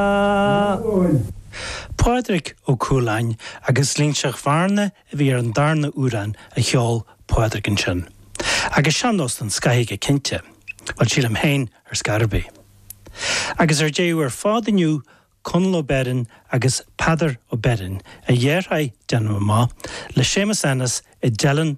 Eoghain. Pádraic Ó Cualáin agus Loingseach Bhearna a bhí ar an darna amhrán a cheol Pádraic ansin. Agus sean-nós don scoith é go cinnte. Bhuel, sílim féin ar scor ar bith. Agus ar deireadh ar fad inniu Conall Ó Beirn agus Peadar Ó Beirn, a dheartháir, déanaim amach, le Séamus Ennis i dTeileann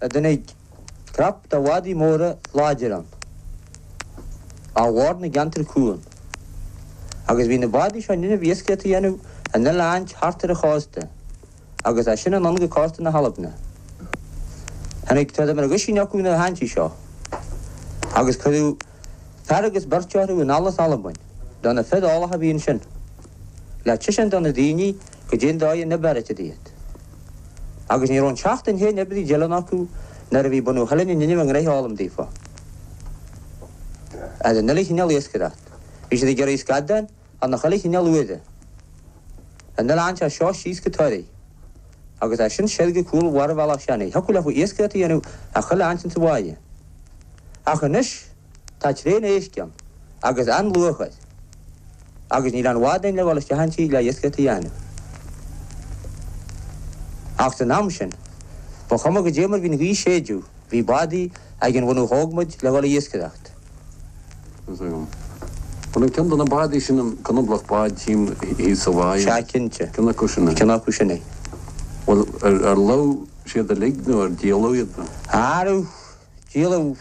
a dtáinig crap de bhádaí móra láidre ann ó Bhord na gCeantar Cúng, agus bhí na bádaí seo in innimh iascaíocht a dhéanamh an uile áit thart ar an chósta agus as sin anonn go cósta na hAlbna. Tháinig tuairim ar dhuisín acu nuair a tháinig siad seo, agus cuireadh fear agus beirt orthu anall as Albain de na fir eolach a bhí ansin le taiseáint do na daoine goidé an dóigh a bheartaítear iad. Agus ní raibh an tseachtain féin ar bith i dTeileann acu nuair a bhí bunadh Theileann in innimh a ngnoithe a fhoghlaim daofa. As an uile chineál iascaireacht, bhí siad ag iarraidh scadáin ar na chuile chineál uaimhe. An uile áit as seo síos go Toraigh, agus as sin soir go cúl an bharraibhealaigh sin, thiocfadh leofa iascaireacht a dhéanamh a chuile áit sa bháighe. Ach anois. Tá tréan éisc ann agus an-luach air agus níl a'n bhád ann le dhul isteach 'un tíghe le hiasgaireacht a dhéanamh. Ach san am sin ba chuma goidé mar bhí'n ghaoth séideadh bhí bádaí ag an bhunadh thógmaid le dhul a iasgaireacht. Bhuel an ceann de na bádaí sin an conablach báid thím thíos sa bháighe? Sea cinnte. Ceann acu sin é? Ceann acu sin é. Bhuel ar lobh siad uilig nó ar díoladh iad? Arú! Díoladh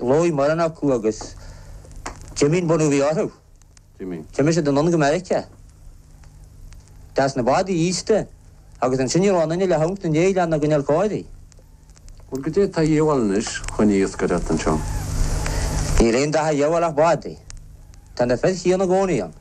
lobh mórán acu agus d'imigh an bunadh a bhí orthu. D'imigh siad anonn go Meiriceá. D'fhás na bádaí aosta agus ansin ní raibh aon duine le theacht ina ndéidh lena gcoinneáil. Bhuel, goidé atá a dhíobháil anois chun iascaireacht anseo? Níl aon dath a dhíobháil ach bádaí. Tá na fir chiúin i gcónaí ann.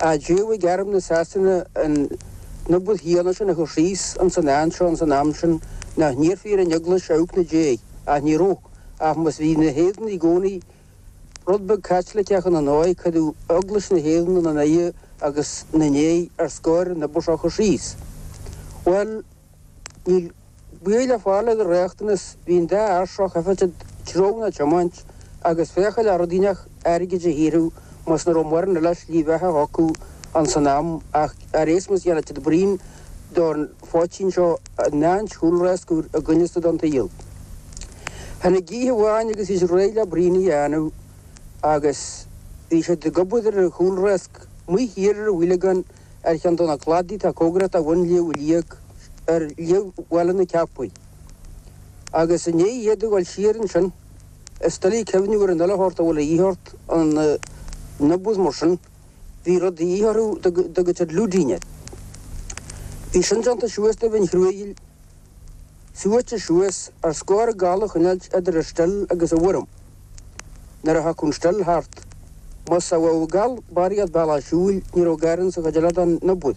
a d'fhéadfadh ag airm na Sasana an obair shíothana sin a chur síos ins an áit seo ins an am sin nach n-iarrfaí ar an Eaglais a theacht na déidh, ach ní rabh, ach mar bhí na hÉireannaigh i gcónaí rud beag Caitliceach ina ndóigh, cuireadh Eaglais na hÉireann ina n-aghaidh agus na ndéidh ar scor an obair seo a chur síos. Bhuel. Níl baol le fáil ar an riachtanas bhí an dá fhairseach thaifeadta tromna a tiomáint agus féacháil ar dhóigh ínteach airgead a shaothrú mar nach raibh mórán eile slí bheatha acu ann san am ach ar éasmuigh dhéanfadh siad braon don phoitín seo in áit chúlráisc i gcoinne stad an tsaoil tháinig oíche amháin agus bhí siad réidh le braon a dhéanamh agus bhí siad ag obair ar chúlráisc amuigh thiar ar an bhoileagán ar cheann de na cladaí atá cóngarach a bhain Liag Ui Liag ar Liag Bhaile na Ceapaí, agus i ndiaidh iad a dhul siar ansin, is doiligh cuimhneamh ar an uile shórt a bhfuil a dhíth ort, in obair mar sin, bhí rud a dhíth orthu, a dtugtar lúidín air. Bhí sin déanta suas de mhin chruaidhil suaite suas ar scór an gal a choinneáilt idir an stil agus an worm. Nuair a thiocfadh an stil thart, más sa bhfoghail barr iad bealach a siúil, ní raibh gar ins an chuid eile den obair.